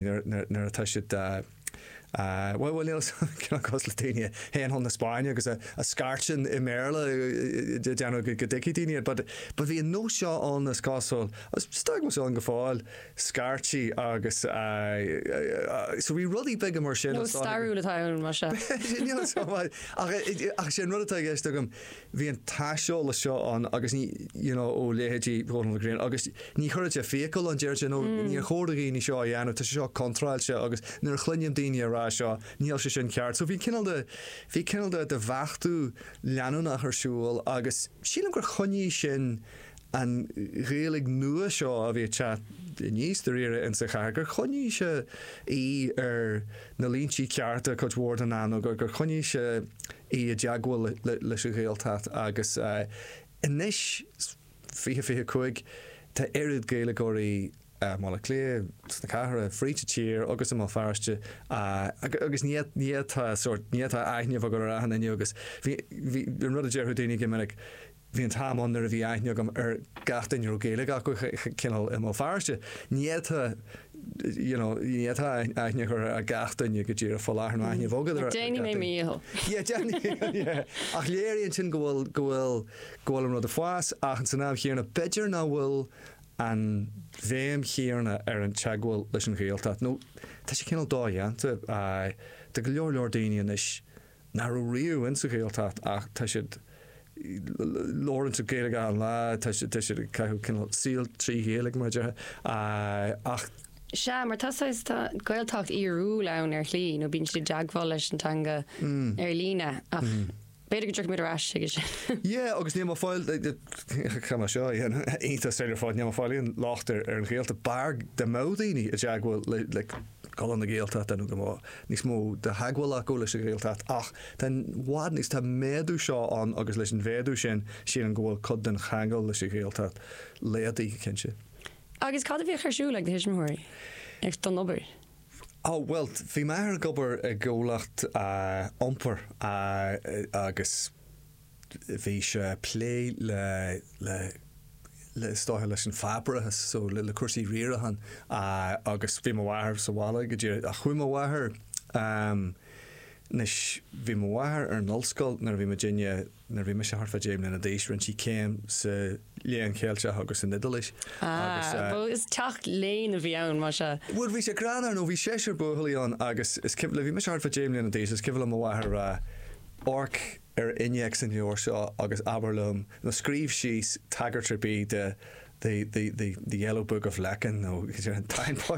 nuair atá siad bhuel, níl fhios a'm cineál cosúil le daoine a théann chun na Spáinne agus a scairteann i mBéarla ag déanamh go dtuigfidh daoine iad but but bhí an nós seo ann is cosúil agus tá sé ann go fóill scairtí agus so bhí rudaí beaga mar sin nó stairiúil atá ann mar seo níl fhios a'm ach ach sé an rud atá i gceist agam Bhí an t-aiseolas seo ann agus ní, you know, ó leithéidí Dhónall Ó Grianna agus ní chuireann sé fiacail ann, déarfaidh sé, no, níor chóir do dhaoine seo a dhéanamh, tá sé seo contráilte agus nuair a chluinim daoine a rá seo, níl sé sin ceart. So bhí cineál de, bhí cineál de, de bheachtú leanúnach ar siúl agus sílim gur choinnigh sin an Ghaeilge nua seo a bhí ag teacht aníos dáiríre insa chathair, gur choinnigh sé í ar na línti cearta cuid mhór den am nó gur, gur choinnigh sé í i dteagmháil leis an Ghaeltacht agus anois, 20, 25, tá oiread Gaeilgeoirí i mBaile Átha Cliath, sna cathracha, fríd an tír agus i mBéal Feirste agus níl aithne agam orthu inniu agus bhí, bhí, an rud a déarfadh daoine go minic, Bhí an t-am ann nuair a bhí aithne agam ar gach duine a raibh Gaeilge acu, cineál i mBéal Feirste. Ní fhéadfá you know ní fhéadfá aithne a chur ar gach duine go díreach faoi láthair, nó aithne a bheith agat ar gach duine. Déanfaidh mé mo dhícheall. Ach léiríonn sin go bhfuil go bhfuil go bhfuil an rud ag fás ach san am chéanna b'fhéidir nach bhfuil an bhéim chéanna ar an teagmháil leis an Ghaeltacht nó tá sé cineál dodhéanta do go leor leor daoine anois nach raibh riamh insa Ghaeltacht ach tá siad labhaireann siad Gaeilge achan lá tá siad tá siad ag caitheamh cineál saol trí Ghaeilge mar a déarfá ach Sea, mar tá saghas, tá Gaeltacht fhíorúil ann ar shlí nó bíonn siad i dteagmháil leis an teanga ar líne ach b'fhéidir go dtiocfaimid ar ais chuige sin. Yeah, agus níl mé ag fáil, tá mar seo dhéanamh iontach ar fad, níl mé ag fáil aon locht ar ar an Ghaeltacht b'fhearr go mbeadh daoine i dteagmháil le le Conradh na Gaeltachta nó go mbeadh níos mó de theagmháil acu leis an Ghaeltacht ach tá i bhfad níos tá méadú seo ann agus leis an mhéadú sin sílim go bhfuil cuid den cheangal leis an Ghaeltacht laghdaithe go cinnte. Agus cad a bhíodh ar siúl ag do thuismitheoirí don obair? Ó bhuel bhí m'athair ag obair i gcomhlacht iompair agus. bhí sé a' plé le, le, le, is dóiche leis an pháipéarachas, so le, le cúrsaí riaracháin agus bhí mo mháthair sa bhaile go díreach ach chuaigh mo mháthair, ehm, anois bhí mo mháthair ar an ollscoil nuair a bhí muidinne, nuair a bhí mise thart fá deich mbliana d'aois, rinne sí céim sa Léann Cheilteach agus san Iodáilis agus eh. Ah, bhuel is teach léinn a bhí ann má sea. Bhuel bhí sé greannmhar nó bhí seisear buachaillí ann agus is cuimhin, le bhí mise thart fá deich mbliana d'aois is cuimhin le mo mháthair a rá, Och, ar innéacs an leabhair seo agus abair liom, nó scríobh síos tagairt ar bith do the, the, the, the Yellow Book of Lecan, nó an Táin Bó,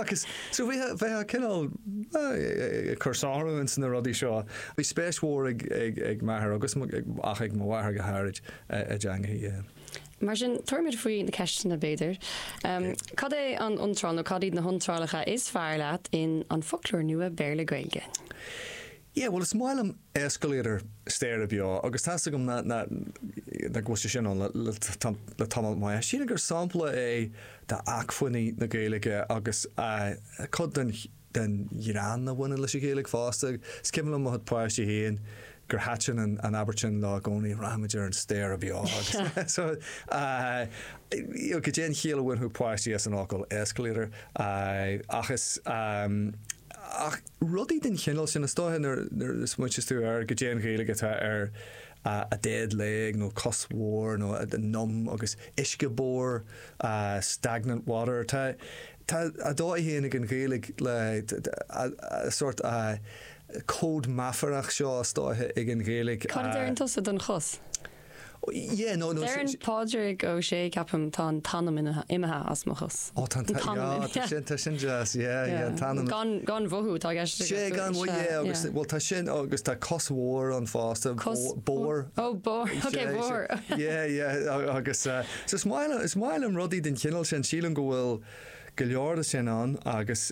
agus so bhí, bheadh a cineál, eh, cur sonrú ins na rudaí seo. Bhí spéis mhór ag, ag, ag m'athair agus mo, ach ag mo mháthair go háirid, eh, i dteangaidh, eh. Mar sin, tabharfaimid faoi na ceisteanna, b'fhéidir. Em, cad é an iontráil, nó cad iad na hiontrálacha is fearr leat in An Foclóir Nua Béarla-Gaeilge? Yeah, bhuel, is maith liom escalator staighre beo agus tá's agam ná go bhfuil sé sin ann le tamall maith. Sílim gur sampla é d'acmhainní na Gaeilge agus cuid den ghreann a bhaineann leis an Ghaeilge fosta. Is cuimhin liom mo chuid páistí féin gur thaitin an abairt sin leo i gcónaí, 'rachaimid ar an staighre bheo'. Goidé an chiall a bhainfeadh páistí as an fhocal escalator ach is. Rudaí den chineál sin, is dóiche, nuair a smaointeas tú ar goidé an Ghaeilge atá ar a dead leg nó cos bhodhar nó numb agus uisce bodhar, stagnant water, tá tá a dóigh féin ag an Ghaeilge le a sórt cód meafarach seo, is dóiche, ag an Ghaeilge. Cad a deireann tusa don chos? Deireann Pádraig Ó Sé, ceapaim, tá an t-anam imithe as mo chos. Ó tá an t-anam imithe. Tá sin deas, yeah, an t-anam. Gan mhothú atá i gceist aige. Sea, gan mhothú, yeah, agus, bhuel, tá sin agus tá cos bhodhar ann fosta, bodhar. Ó, bodhar, ok, bodhar. Yeah, yeah, agus, so is maith liom, is maith liom rudaí den chineál sin, sílim go bhfuil go leor de sin ann agus,